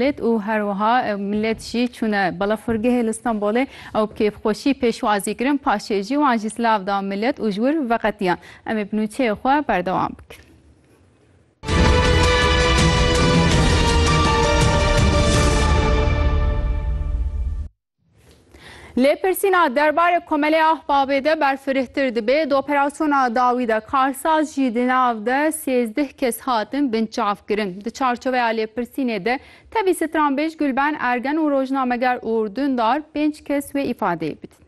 Lêt û her wiha millet jî çûne balafirgehê li Stenbolê ew bi kêfxweşî pêşwazî kirin paşê jî wan jî silav da millet û ji wir veqetiyan. Em ê bi nûçeyê xwe berdewam bikin. Lêpirsîna derbarê Komelê Ahbabê de berfirehtir dibe, di operasyona dawî de karsaz jî di nav de sêzdeh kes hatin binçavkirin. Di çarçoveya lêpirsînê de tevî stranbêj Gulben Ergen û rojnameger Uğur Dündar pênc kes wê îfadeyê bidin.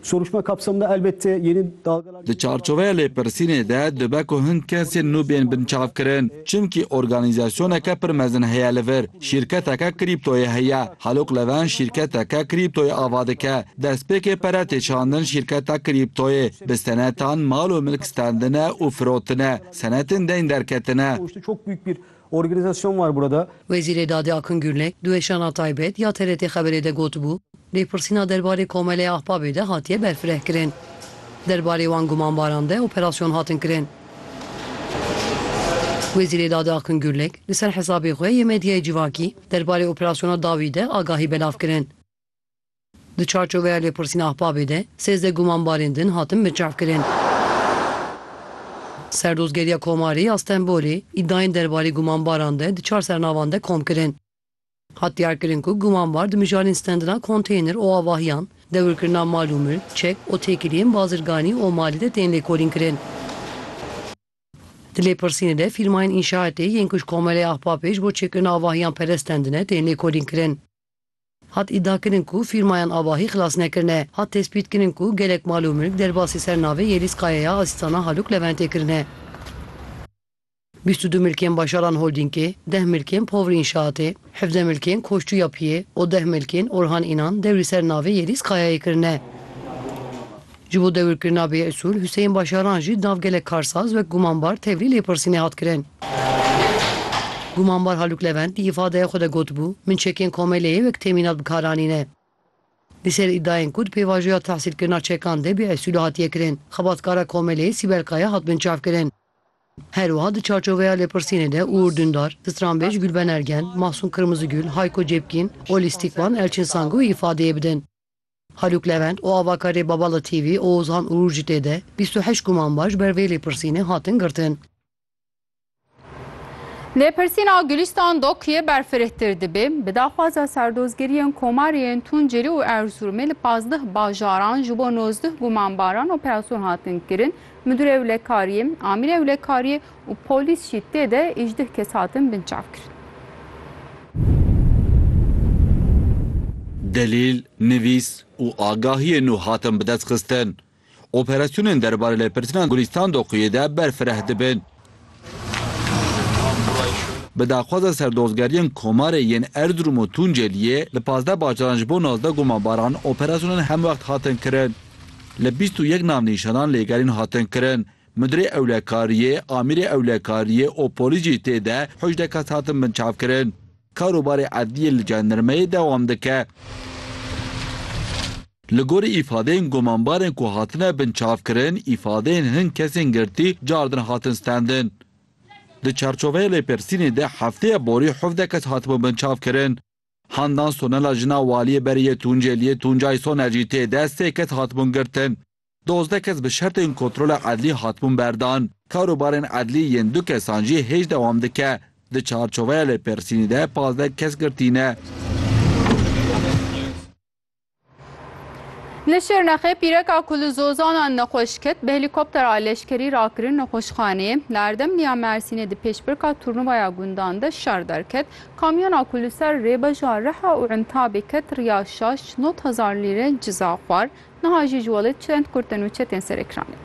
Soruşma kapsamında elbette yeni dalgalar... Di çarçoveya lêpirsînê de dibe ku hin kesên nû bên binçavkirin. Çimkî organîzasyoneke pir mezin heye li vir. Şîrketeke krîptoyê heye. Halûk Levent şîrketeke krîptoyê ava dike. Destpêkê pere tê çandin şîrketa krîptoyê. Bi senetan mal û milk standine û firotine. Senetên deyn derketine. Organizasyon var burada. Wezîrê Dadê Akın Gürlek di weşana taybet ya TRT Xeberê de gotibû, lêpirsîna derbarê Komeleya Ahbabê de hatiye berfirehkirin. Derbarê wan gumanbaran de operasyon hatin kirin. Wezîrê Dadê Akın Gürlek li ser hesabê xwe yê medyayê civakî derbarê operasyona dawî de agahî belav kirin. Di çarçoveya lêpirsîna Ahbabê de sêzdeh gumanbarên din hatin binçavkirin. Serdozgeriya Komarê ya Stenbolê îdayên derbarê gumanbaran de di çar sernavan de kom kirin. Hat diyarkirin ku gumanbar di mijarên stendina konteyner û avahiyan, dewirkirina mal û milk, çek û têkiliyên bazirganî û malê de tên lêkolînkirin. Di lêpirsînê de fîrmayên înşaetê yên ku ji Komarê Ahbabê ji bo çêkirina avahiyan perest stendine tên lêkolînkirin. Hat îdiakirin ku fîrmayan avahî xilas nekirine. Hat tespîtkirin ku gelek mal û milk derbasî ser navê Yelîz Kayeya a Sîstana Halûk Leventê kirine. Bîst û du milkên Başaran Holdîngê, deh milkên Povr Înşaatê, hevdeh milkên Koştu Yapiyê û deh milkên Orhan Înan dewrî ser navê Yelîz Kayayê kirine. Ji bo dewirkirina vê usûl Huseyîn Başaran jî nav gelek karsaz wek gumanbar tevlî lêpirsînê hat kirin. Gumanbar Halûk Levent di îfadeya xwe de gotibû, Min çekên Komeleyê wek temînat bi kar anîne. Li ser îdayên ku di pêvajoya tehsîlkirina çekan de vê usûlê hatiye kirin, xebatkara Komeleyê Sîbel Kaya hat binçavkirin. Her wiha di çarçoveya lêpirsînê de Uğur Dündar, stranbêj Gülben Ergen, Mahsun Kırmızıgül, Hayko Cepkin û lîstikvan Elçin Sangu îfadeyê bidin. Halûk Levent û avakarê Babala TV Oğuzhan Uğur jî tê de bîst û heşt guman baş ber vê lêpirsînê hatin girtin. Lêpirsîna Gulîstan Dokyê berfirehtir dibê, bi daxwaza serdozgiriyên Komarê yên Tunceli û Erzurumê li pazdeh bajaran ji bo nozdeh gumanbaran operasyonhatin kirin, Midûrê Ewlekariyê, Amîrê Ewlekariyê, û polîs jî tê de êjdih kes hatin binçavkirin. Delîl, nivîs û agahiyên nû hatin bidestxistin. Operasyonên derbarê lêpirtina Gulîstan Doquyê de berfireh dibin. Bi daxwaza serdozgeriyên Komarê yên Erzirûm û Tuncêliyê li pazdeh bajaran ji bo nozdeh gumanbaran operasyonên hemwext hatin kirin. Li bîst û yek navnîşanan lêgerîn hatin kirin Mudirê Ewlekariyê, Amîrê Ewlekariyê û polîs jî tê de hejdeh kes hatin binçavkirin. Karûbarê edliyê li jandarmayê dewam dike. Li gorî îfadeyên gumanbarên ku hatine binçavkirin, îfadeyên hin kesên girtî cardin hatin stendin. Di çarçoveya lêpirsînê de hefteya borî hevdeh kes hatibûn binçavkirin. Handan Sonela jina waliyê berê yê Tuncêliyê Tuncay Soner jî tê de sê kes hatibûn girtin. Dozdeh kes bi şertên kontrola edlî hatibûn berdan. Karûbarên edlî yên du kesan jî hêj dewam dike. Di çarçoveya lêpirsînê de pazdeh kes girtî ne. Li Şirnexê pîreka ku li zozanan nexweş ket, bi helîkoptera leşkerî rakirin nexweşxaneyê. Li Erdemliya Mersînê di pêşbirka turnuvaya gundan de şer derket. Kamyona ku li ser rêbeja Riha û Entabê ket riya şaş nod hezar lîre ciza xwar. Niha jî ji welê çend Kurd tên û çi tên ser ekranê?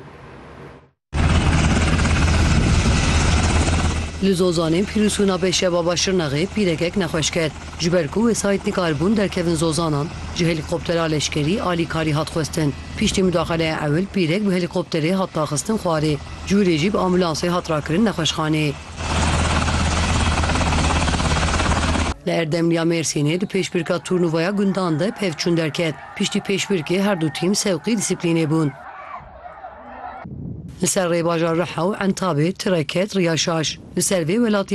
Li Zozanê pîrûsûna bê şebaba Şirnexê pîrekek nexweş ket. Ji ber ku wesayît nikaribûn derkevin Zozanan, ji helîkoptera leşkerî alîkarî hat xwestin. Piştî mudaxeleya ewil pîrek bi helîkopterê hat daxistin xwarê. Cûrê jî bi ambûlansê hat rakirin nexweşxanê. Li Erdemliya Mêrsînê di pêşbirka turnuvaya gundan de pevçûn derket. Piştî pêşbirkê her du tîm sewqî dîsiplînê bûn. Li ser rê bajar Riha û Entabê tire ket riya şaş. Li ser vê welatiyan